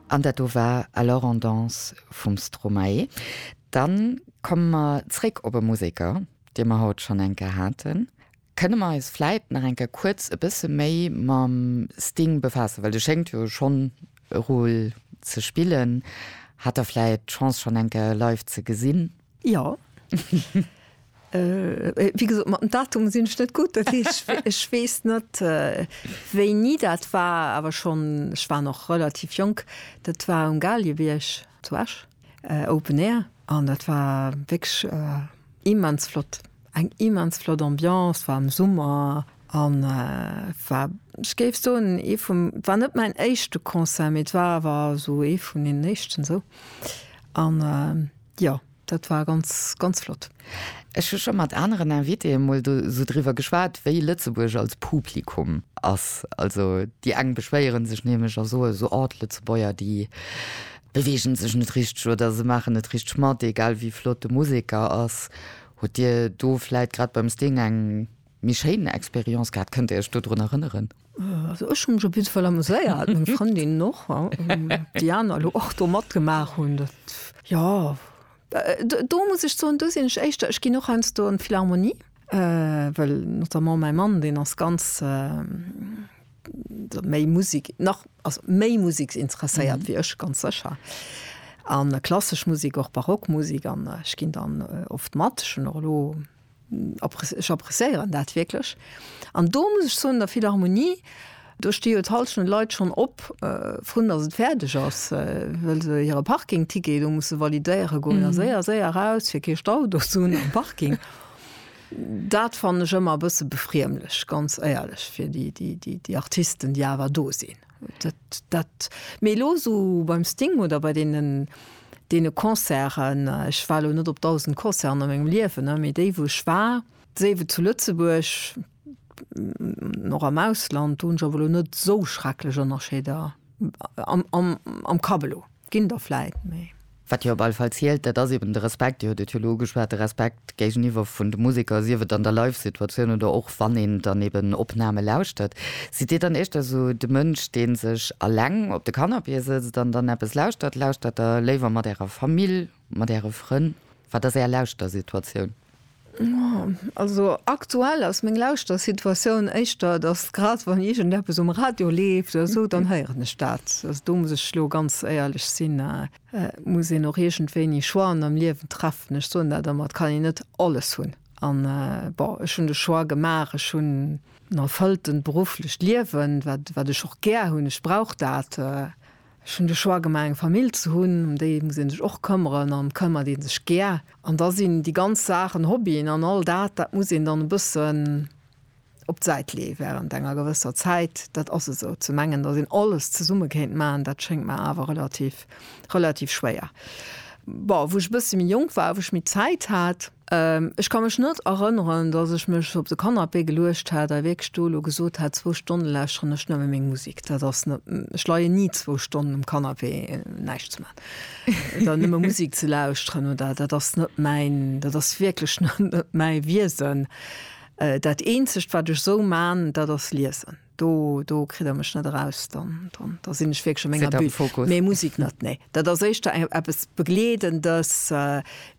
An dat do war Alors on danse vum Stromae. Dann komme mer zréck op e Museker, dee mer haut schonn eng Kéier haten. Kënne mer eis vläit nach eng Kéier kuerz e bësse méi mam Sting befaassen, well de schéngt jo schonn e Rôle ze spillen. Hat Der vläit d'Chance schonn eng Kéier live ze gesinn? Jo. Wéi gesot, mat den Datumen sinn ech net gutt. Ech weess net, wéini dat war, awer schonn, ech war nach relativ jonk, dat war um Galiebierg zu Esch, Open Air, an dat war wierklech immens flott. Eng immens flott Ambiance, war am Summer an war, ech géif soen, ee vum, war net mäin éischte Concert, mee et war awer esou ee vun deenen éischten esou. An. Jo, dat war ganz, ganz flott. Ech hu scho mat aneren Invitéë mol do sou driwwer geschwat, wéi Lëtzebuerg als Publikum ass. Also déi eng beschwéiere sech nämlech a soe sou, oh d'Lëtzebuerger, déi beweege sech net richteg oder se maachen net richteg mat, egal wéi flott de Museker ass. Hutt Dir do vläit grad beim Sting eng. Méi schéin Expérience gehat? Kënnt der Iech do drun erënneren? Also ech hunn mech op jiddefall amuséiert, meng Frëndinnen och, déi aner elo och do matgemaach hunn, dat jo. Do muss ech soen, do sinn ech éischter, ech ginn och heiansdo an d'Philharmonie, well notamment mäi Mann, deen ass ganz méi Musik nach, ass méi musiksinteresséiert wéi ech ganz sécher, a klassesch Musik, och Barockmusik an ech ginn dann oft mat. Ech hunn och elo. Ech appreciéieren dat wierklech. An do muss ech soen, der Philharmonie, do sti jo d'Halschent Leit schonn op, vrun datt et fäerdeg ass, well se hire Parkingticket do musse validéiere goen a séier, séier eraus, fir kee Stau do ze hunn am Parking. Dat fannen ech ëmmer e bësse befriemlech, ganz éierlech, fir déi Artisten, déi awer do sinn. Dat, dat, mee elo esou beim Sting oder bei deenen, deene Concerten, ech war elo net op dausend Concerten a mengem Liewen, ne, mee déi wou ech war, séif et zu Lëtzebuerg an och am Ausland, do hunn ech awer elo net esou schrecklech Ënnerscheeder am, am, am Kapp elo. Ginn der vläit méi. Wat jo op alle Fall zielt, dat ass eben de Respekt, Dir hutt et jo elo ugeschwat, de Respekt géigeniwwer vun de Museker, sief et an der Live-Situatioun oder och wann een dann eben Opname lauschtert. Sidd Dir dann éischter esou de Mënsch, dee sech eleng op de Canapé sëtzt an dann eppes lauschtert? Lauschtert Der léiwer mat Ärer Famill, mat Äre Frënn? Wat ass Är Lauschtersituatioun? Also aktuell ass meng Lauschtersituatioun éischter, datt grad wann iergendeppes um Radio leeft oder esou, dann héieren ech dat. Also do muss ech elo ganz éierlech sinn, et muss een och iergendwéini Choixen am Liewen treffen. Ech soen dat ëmmer, et kann een net alles hunn. An bon, ech hunn de Choix gemaach, ech hunn en erfëlltent berufflecht Liewen, wat, wat ech och gär hunn, ech brauch dat. Ech hunn de Choix gemaach, eng Famill ze hunn, ëm déi muss ee sech och këmmeren an këmmert ee sech gär. An da sinn déi ganz Saachen, Hobbyen an all dat, dat muss een dann e bëssen op d'Säit leeë wärend enger gewësser Zäit. Dat ass esou. Ze mengen, datt een alles zesumme kéint maachen, dat schéngt mer awer relativ, relativ schwéier. Bon, wou ech e bësse méi jonk war, wou ech méi Zäit hat, Ech ka mech net erënneren, dass ech mech op de Canapé geluecht hätt a wierklech do elo gesot hätt, zwou Stonne lauschteren ech nëmme meng Musek. Dat ass net, ech leien ni zwou Stonnen um Canapé näischt ze maachen oder nëmme Musek ze lauschteren oder dat ass net mäin, dat ass wierklech net mäi Wiesen. Dat eenzegt wat ech esou man, dat ass liesen. Do, do kritt Der mech net eraus, dann, dann, da sinn ech wierklech a menger Bulle. Mee Musik net, nee. Dat ass éischter eng, eppes Begleedendes,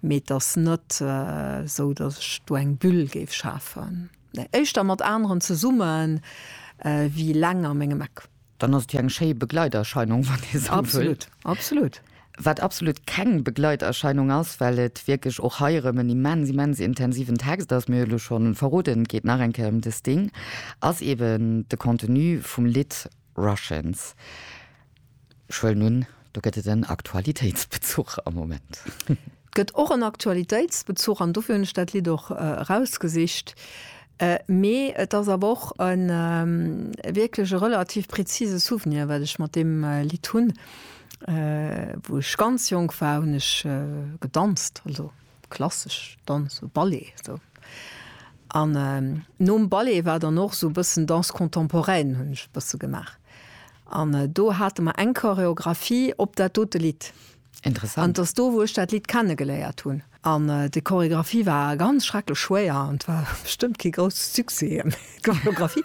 mee et ass net esou, datt ech do eng Bulle géif schafen. Nee, éischter mat aneren zesumme wéi eleng a mengem Eck. Dann ass et jo eng schéi Begleiterscheinung, wann ee sou wëllt. Absolut, absolut. Wat absolut keng Begleiterscheinung ass, well et wierklech och hei erëm en immens, immens intensiven Text ass, mir hu lo scho verroden, et geet nach eng Kéier ëm de Sting, ass eeben de Contenu vum Lidd Russians. Ech huelen un, do gëtt et en Aktualitéitsbezuch am Moment. Gëtt och en Aktualitéitsbezuch, an dofir hunn ech dat Lidd och erausgesicht, mee et ass awer och e wierklech e relativ prezise Souvenir, wat ech mat deem Lidd hunn. Wou ech ganz jonk war, hunn ech gedanzt, also klassesch Danz, sou Ballet esou. An nom Ballet war dann och esou e bëssen Danse contemporaine, hunn ech e bësse gemaach. An do hate mer eng Choreographie op dat dote Lidd. Interessant. An et ass do wou ech dat Lidd kenne geléiert hunn. An déi Choreographie war ganz schrecklech schwéier an et war bestëmmt kee grousse Succès déi Choreographie.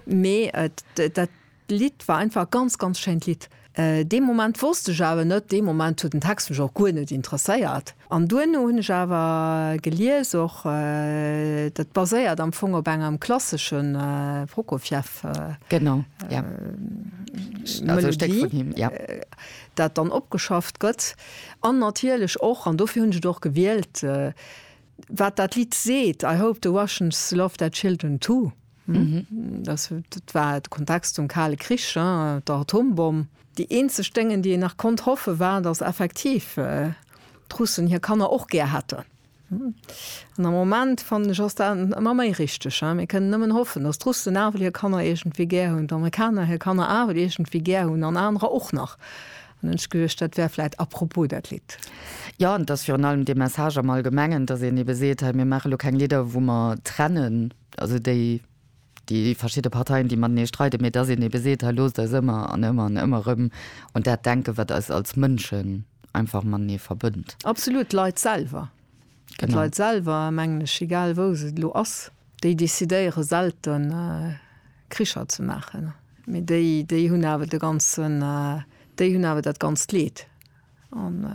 Mee dat Lidd war einfach e ganz ganz schéint Lidd. Dee Moment wosst ech awer net, dee Moment huet den Text mech och guer net interesséiert. An duerno hunn ech awer gelies och, dat baséiert am Fong op engem klassesche Prokofjeff. Genau, jo. Melodie. Stéck vun him, jo. dat dann opgeschafft gëtt an natierlech och, an dofir hunn ech et och gewielt, wat dat Lidd seet, I hope the Russians love their children too. Dat war de Kontext zum Kale Krich, der Atombomm. Déi eenzeg Déngen, déi een nach konnt hoffe war, datt effektiv d'Russen hir Kanner och gär hätten. An am Moment fannen ech ass dat emmer méi richteg. Mir kënnen nëmmen hoffen, datt d'Russen nawell hir Kanner iergendwéi gär hunn, d'Amerikaner hir Kanner awel iergendwéi gär hunn an anerer och nach. An hunn ech geduecht, dat wär vläit apropos dat Lidd. Jo, an et ass virun allem dee Message am Allgemengen, datt een ebe seet, hei mir maache lo keng Lidder wou mer trennen, also déi déi verschidde Parteien déi matenee streiden, mee datt een ebe seet, hei loosst eis ëmmer an ëmmer an ëmmer erëm un dat denken, wat eis als Mënschen, einfach matenee verbënnt. Absolut, d'Leit selwer. Genau. D'Leit selwer, mengen ech, egal wou se elo ass, déi decidéiere selten Kricher ze maachen, mee déi, déi hunn awer de ganzen, déi hunn awer dat ganzt Leed. An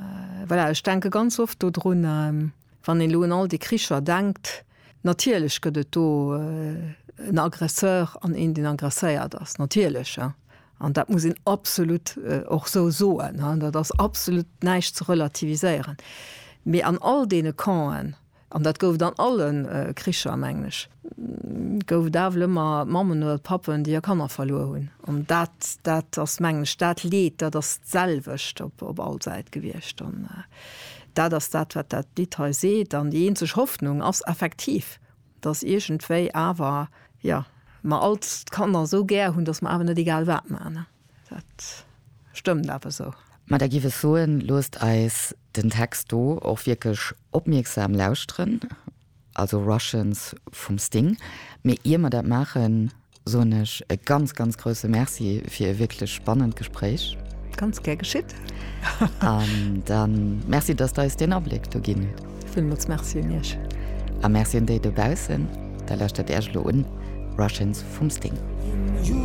voilà, ech denke ganz oft dodrun, wann een elo un all déi Kricher denkt, natierlech gëtt et do en Aggresseur an een, deen aggresséiert ass, natierlech, An dat muss een absolut och esou soen, dat ass absolut näischt ze relativiséieren. Mee an all deene Campen, an dat gouf et an alle Kricher, mengen ech, gouf et awel ëmmer Mammen oder Pappen, déi hir Kanner verluer hunn. An dat, dat ass, mengen ech, dat Leed, dat ass d'selwecht op all Säit gewiescht. An dat ass dat, wat dat Lidd hei seet. An déi eenzeg Hoffnung ass effektiv, Dass iergendwéi awer, jo, mer all d'Kanner esou gär hunn, dass mer awer net egal wat maachen. Dat stëmmt awer esou. Ma da giff ech soen, loosst eis den Text do och wierklech opmierksam lauschteren, also Russians vum Sting. Mee ier mer dat maachen, soen ech e ganz, ganz grousse Merci fir e wierklech spannend Gespréich. Ganz gär geschitt. An da Merci, dass Der eis deen Abléck do ginn hutt. Villmools Merci un Iech. A Merci un déi dobaussen. Da lauschtert Iech elo un Russians vum Sting.